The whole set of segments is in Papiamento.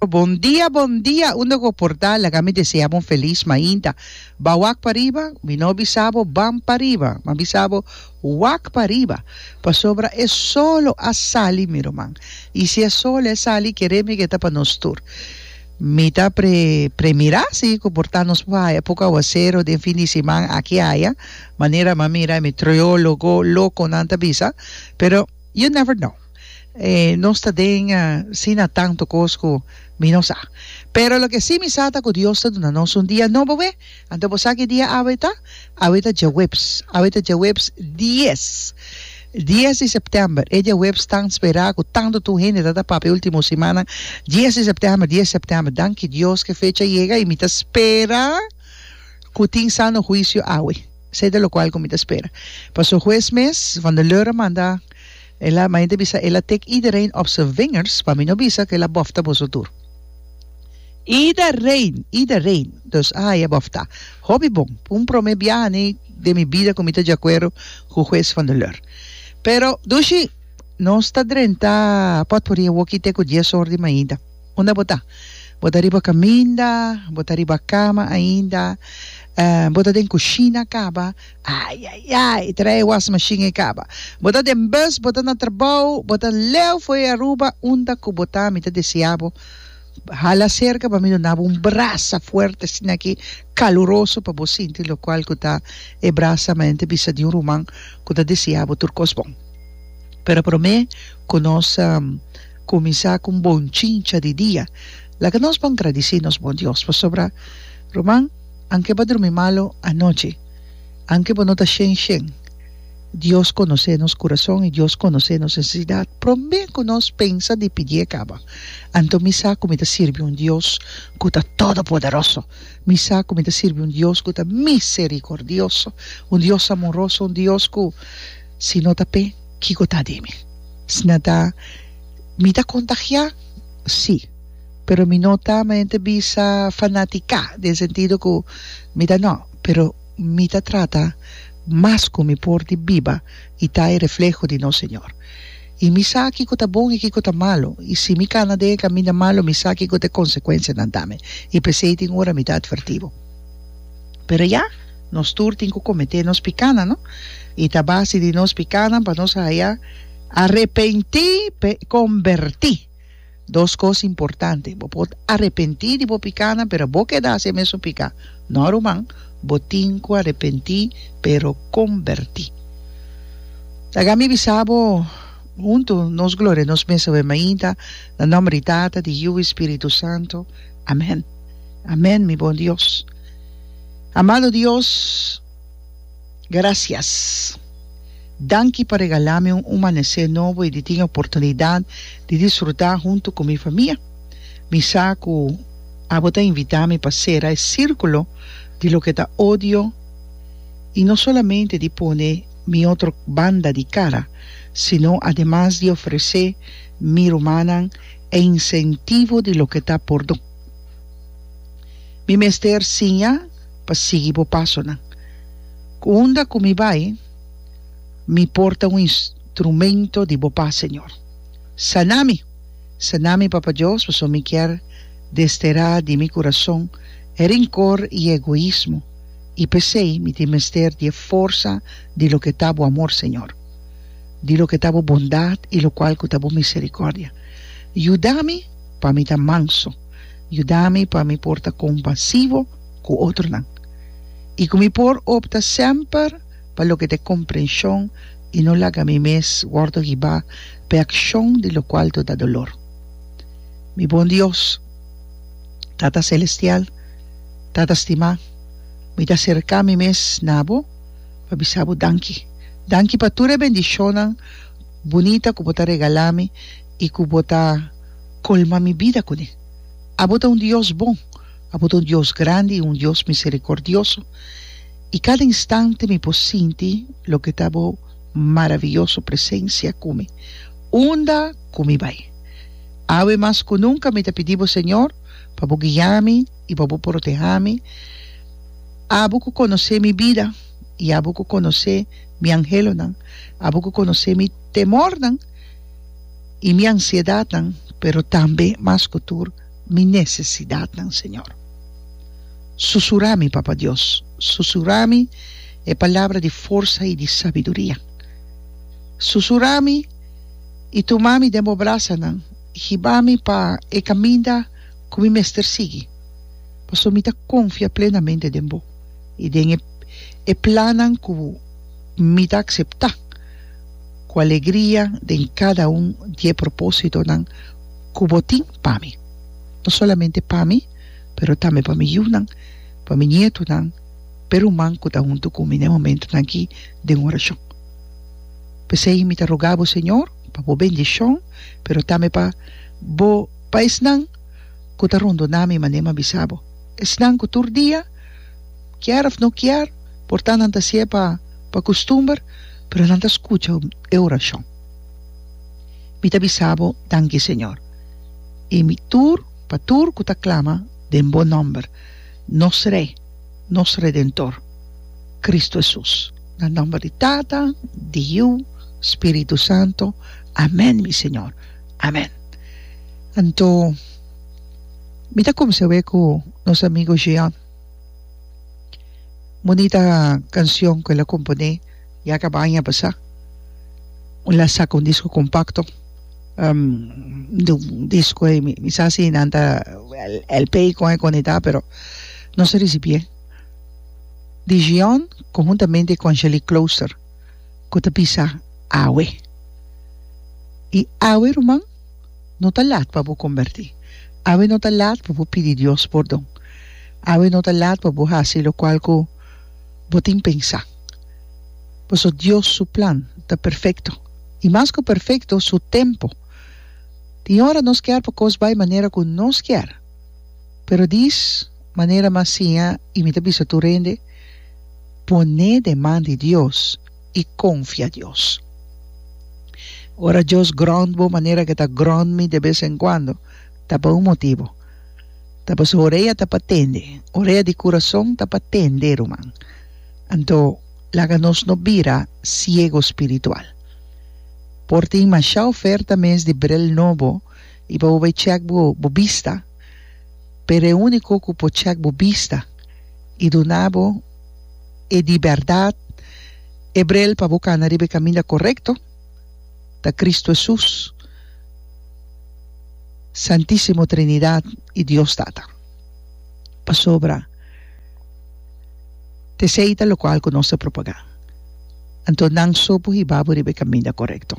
Bon dia bon dia unda go por ta laga mi desea bo un felis mainta ba wak pariba mi no bisa bo ban pariba ma bisa bo wak pariba pasobra e solo a sali mi ruman y si e solo a sali kere mi ke ta pa nos tur mi ta pre premira si ku por ta nos por haya poco aguacero den fin di siman aki haya manera mi a mira mi troyolo go loco nan ta bisa pero you never know. Nos ta den si na tantu kos ku mi no sa. Pero loke si mi sa ta ku Dios ta duna nos un dia nobo awe. Anto bo sa ki dia awe ta? Awe ta djaweps. Awe ta djaweps dies. Dies di sèptèmber. E djaweps tan spera ku tantu tur hende ta ta papia e último simana. Dies di sèptèmber, dies di sèptèmber. Danki Dios ku e fecha yega i mi ta spera ku tin sano huisio awe. Sete lokual ku mi ta spera. Paso hues mes, Van der Leur a manda. Ela ma hende bisa ela take iedereen op se vingers pa mi no bisa cu ela bofta boso tur. Iedereen! Iedereen! Dus a haya bofta. Hopi bon. Pu un prome biaha ni den mi bida cu mi ta djacuero cu Juez van der Leur. Pero, Dushi, nos ta drenta potpourri e woki te cu dies or di mainda. Unda bo ta? Bo ta riba caminda? Bo ta riba cama ainda? Bo ta den cushina caba? Ai ai ai e trae e was machine e caba bo ta den bus bo ta na trabao bo ta leu for e Aruba unda cu bo ta mi ta desea bo hala cerca pa mi duna bo un brasa fuerte asina aki caluroso pa bo sinti locual cu ta e brasa mente bisa di un ruman cu ta desea bo tur cos bon pero prome cu nos cuminsa cu un bon chincha di dia laga nos bon gradici nos bon Dios pasobra ruman. Anke bo a drumi malu anochi, anke bo no ta shen shen, Dios konosé nos kurason i Dios konosé nos nesesidat promé ku nos pensa di pidié kaba. Anto mi sa ku mi ta sirbi un Dios ku ta todopoderoso. Mi sa ku mi ta sirbi un Dios ku ta miserikordioso, un Dios amoroso, un Dios ku si no ta p'e, kiko ta di mi? Sna ta mi ta kontagiá? Sí. pero mi no ta mi ta bisa fanatica den sentido cu mi ta no pero mi ta trata mas cu mi por di biba y ta e refleho di nos Señor y mi sa kico ta bon y kico ta malo y si mi cana den e caminda malo mi sa kico ta e consecuencianan tambe y pesey tin ora mi ta adverti bo pero ya nos tur tin cu comete nos picanan no y ta basi di nos picanan pa nos haya arepenti pe conberti. Dos cos importante, bo por arepenti di bo picanan pero bo keda haci e mesun pica. No ruman, bo tin cu arepenti pero comberti. Laga mi bisa bo, hunto nos gloria nos mes awe mainta na nomber di Tata, di Yiu y Spiritu Santo. Amen. Amen mi bon Dios. Amado Dios. Gracias. Danki pa regalá mi un umanesé nobo i di tin e oportunidat di disfrutá huntu ku mi famia. Mi sa ku abo ta invitá mi pa sera e sírkulo di loke ta odio i no solamente di pone mi otro banda di kara, sino ademas di ofresé mi rumannan e insentivo di loke ta por dun. Mi mester siña. pa sigui bo pasonan. Ku unda ku mi bai, mi por ta un instrumento di bo pas, Señor. Saná mi! Saná mi, Papa Dios, pasobra mi kier desterá di mi kurason e rinkor i e egoismo, i p'esei mi tin mester di e forsa di loke ta bo amor, Señor, di loke ta bo bondat i lokual ku ta bo miserikòrdia. Yuda mi pa mi ta manso. Yuda mi pa mi por ta kompasivo ku otronan i ku mi por opta semper pa loke ta komprenshon i no laga mi mes wòrdu hibá p'e akshon di lokual to da dolor. Mi bon Dios, Tata Selestial, Tata stimá, mi ta serká mi mes na bo pa bisa bo danki. Danki pa tur e bendishonnan bunita ku bo ta regalá mi. i ku bo ta kolma mi bida kuné. Abo ta un Dios bon, abo ta un Dios grandi i un Dios miserikordioso, i kada instante mi por sinti loke ta bo maravioso presensia ku mi unda ku mi bai. Awe mas ku nunka mi ta pidi bo Señor pa bo guia mi i pa bo proteha mi, abo ku konosé mi bida i abo ku konosé mi anhelonan, abo ku konosé mi temornan. y mi ansiedadnan, pero tambe mas cu tur mi necesidadnan, Señor. Susura mi, Papa Dios, susura mi e palabra di forsa y di sabiduria. Susura mi y tuma mi den bo brasanan, hiba mi pa e caminda cu mi mester sigui, pasobra mi ta confia plenamente den bo y den e plannan cu mi ta acepta. ku alegria den kada un di e propósitonan ku bo tin pa mi, no solamente pa mi, pero tambe pa mi yunan, pa mi nietunan, p'e ruman ku ta huntu ku mi na e momentunan akí den orashon. P'esei mi ta rogá bo, Señor, pa bo bendishon, pero tambe pa bo, pa esnan ku ta rondoná mi, manera mi a bisa bo, esnan ku tur dia, Kier of no kier, por ta nan ta si'e pa pa kustumber, pero nan ta skucha e orashon. Mi ta bisa Bo danki, Señor, i mi tur pa tur ku ta klama den Bo nòmber, nos Rei, nos Redentor, Kristu Hesus. Na nòmber di Tata, di Yu, Spiritu Santo. Amèn, mi Señor. Amèn. Anto mi ta kumsa awé ku nos amigu Jean. Bunita cancion cu el a compone ya caba aña pasa el a saca un disco compacto de un disco ey mi sa si nan ta lp y con e conecta pero no se ricibié Digion conhuntamente cu Angelique Closer cu ta bisa awe y awe ruman. No ta lat pa bo kombertí. Awe no ta lat pa bo pidi Dios pordon. Awe no ta lat pa bo hasi lokual ku bo tin pensá. Pasobra Dios su plan ta perfekto, i mas ku perfekto, su tempu. Tin ora nos kier pa kos bai manera ku nos kier, pero dis manera mas siña, i mi ta bisa tur hende, Pone den man di Dios. i konfia Dios. Ora Dios grònt bo manera ku e ta grònt mi de bes en kuando, ta pa un motibu. Ta pasobra orea ta pa tende. Orea di kurason ta pa tende, ruman. Anto, laga nos no bira siegu spiritual. Por tin mashá oferta mes di brel nobo i pa bo bai chèk bo bo bista, pero e úniko ku por chèk bo bista i duna bo, e di bèrdat, e brel pa bo kana riba e kaminda korekto, ta Kristu Hesus, Santísimo Trinidat i Dios Tata. Pasobra ta esei ta lokual ku nos ta propagá. Anto nan so por hiba bo riba e kaminda korekto.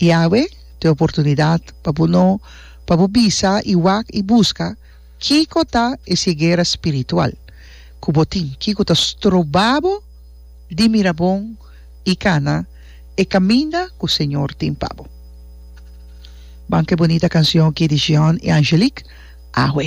I awe ta e oportunidat pa bo no pa bo bisa i wak i buska Kiko ta e segera spiritual ku bo tin? Kiko ta stroba bo di mira bon i kana e kaminda ku Señor tin pa bo? Ban ku e bonita kansion aki di Jean i Angelique, Awe.